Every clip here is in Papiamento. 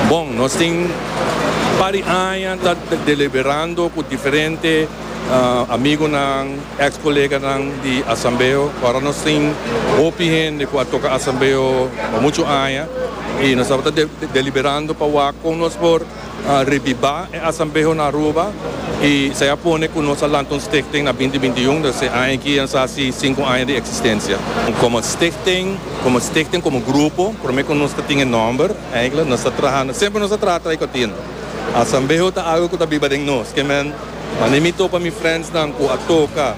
Bon, nos tin par di aña ta deliberando cu diferente amigonan, ex coleganan di Asambeo. Ora nos tin hopi hende cu a toca Asambeo pa muchu aña y nos tabata deliberando pa wak con nos por. Revivá e Asambeho na Aruba i esei a pone ku nos a lanta un stichting na binti binti un, dus e aña aki a sa hasi sinku aña di eksistensia. Komo stichting, komo stichting, komo grupo, promé ku nos ta tin e nòmber, eintlik nos ta trahando, semper nos a traha trai kòtino. Asambeho ta algu ku ta biba den nos, ke men, wanneer mi topa mi friendsnan ku a toka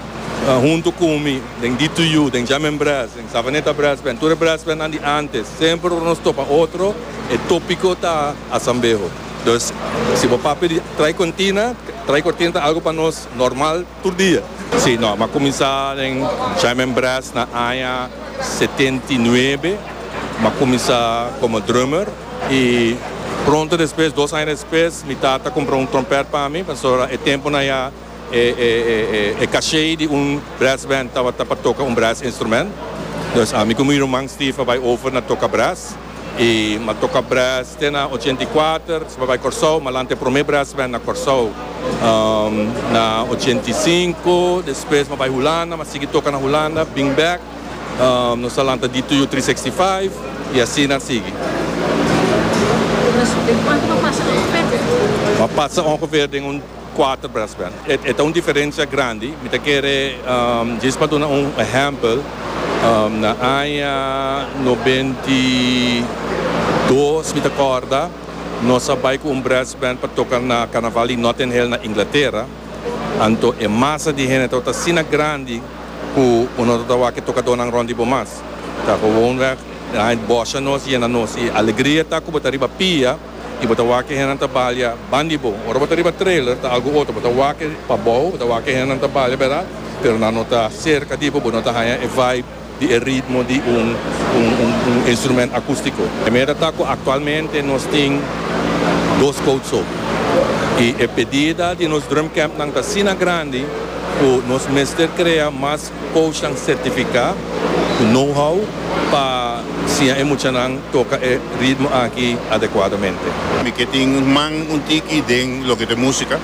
huntu ku mi den DTU, den Jam en Brass, den Savaneta Brass Band, tur e brass bandnan di ántes, semper ora nos topa otro, e tópiko ta. Asambeho. Dus si bo papia di trai cortina, trai cortina ta algo pa nos normal tur dia. Sí, no, m'a cuminsa den Jaime en Brass na aña setenta i nuebe. M'a cuminsa como drummer y pronto despues, dos aña despues, mi tata compra un trompet pa mi, pasobra e temponan ya. E caché di un brass band tabata pa toca un brass instrument. Dus ami cu mi ruman Steve a bay over na toca brass. Y mi a toca brass te na ochenta y kuater, despues a bay Corsou. Mi a lanta e prome brass band na Corsou na ochenta y sinku. Despues mi a bay Hulanda, mi a sigui toca na Hulanda. Bin bek nos a lanta D2U three sixty five y asina a sigui. Mi a pasa ongeveer den un. Kuater brass band. E ta un diferensia grandi. Mi ta kere djis pa duna un ehèmpel. Na aña nobenta i dos mi ta kòrda nos a bai ku un brass band pa toka na karnaval di Notting Hill na Inglatera. Anto e masa di hende tabata asina grandi ku bo no tabata wak e tokadónan rònt di bo mas. Ta gewonweg, den aña bòsha nos yena nos. I alegria ta ku bo ta riba pia. y bo ta wak e hendenan ta balia ban di bo. Ora bo ta riba trailer ta algo otro, bo ta wak e pabou, bo ta wak e hendenan ta balia berad, pero nan no ta cerca di bo, bo no ta haya e vibe di e ritmo di un un instrument acustico. E meda ta cu actualmente nos tin dos coat so y e pedida di nos drumcampnan ta asina grandi cu nos mester crea mas. Coachnan certifica cu know-how pa siña e muchanan toca e ritmo aki adecuadamente. Mi ke tin man un tiki den loke ta musica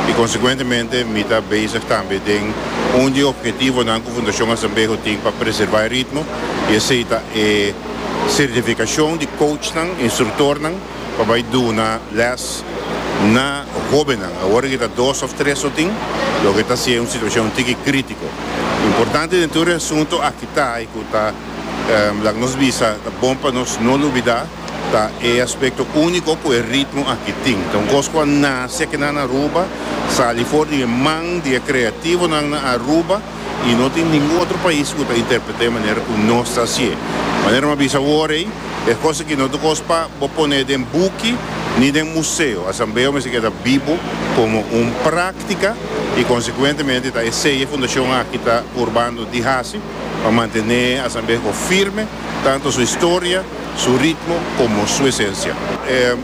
y consecuentemente mi ta bezig tambe den un di e objetivonan cu Fundacion Azambejo tin pa preserva e ritmo y esey ta e certificacion di coachnan, instructornan, pa bai duna les na hobennan awor ke ta dos of tres lo tin loke ta haciendo un situacion tiki critico importante den tur e asunto akitai cu ta laga nos bisa ta bon pa nos no lubida ta e aspecto unico cu e ritmo aki tin ta un cos cu a naci aki nan na Aruba sali for di e man di e creativonan na Aruba. y no tin ningun otro pais cu ta interprete manera cu nos ta haci'e. Manera m'a bisa awor ey, e cosa que no ta cos pa bo pone den buki ni den museo, asambeo mester keda bibo como un practica y consecuentemente ta esey e Fundacion aki ta purbando di haci pa mantene asambeo firme, tanto su historia, su ritmo como su esencia.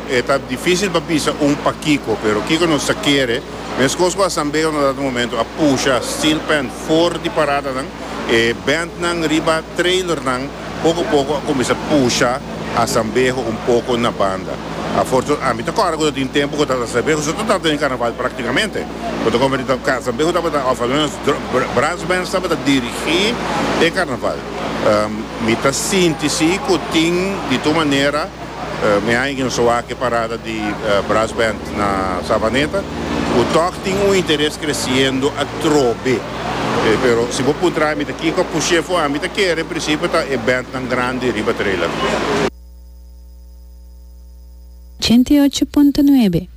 E ta dificil pa bisa un pakico, pero kico nos ta kere? Meskos cu Asambeo na dado momento a pusha steel pan for di paradanan, e bandnan riba trailernan poco poco a cuminsa pusha Asambeo un poco na banda. Afortuna, ami ta corda cu ta tin tempo cu ta Asambeo so ta tabata den Carnaval practicamente. Cu ta converti ta Asambeo tabata of almenos brass bands tabata dirigi e Carnaval. Mi ta sinti si cu tin di tur manera. Mi haña ki nos a wak e parada di Brass Band na Savaneta ku tòg tin un interes kresiendo atrobe. Pero si bo puntra ami ta kiko ku shefo ami ta kere, en prinsipio ta e bandnan grandi riba trailer. Ochenta i ocho punto nuebe.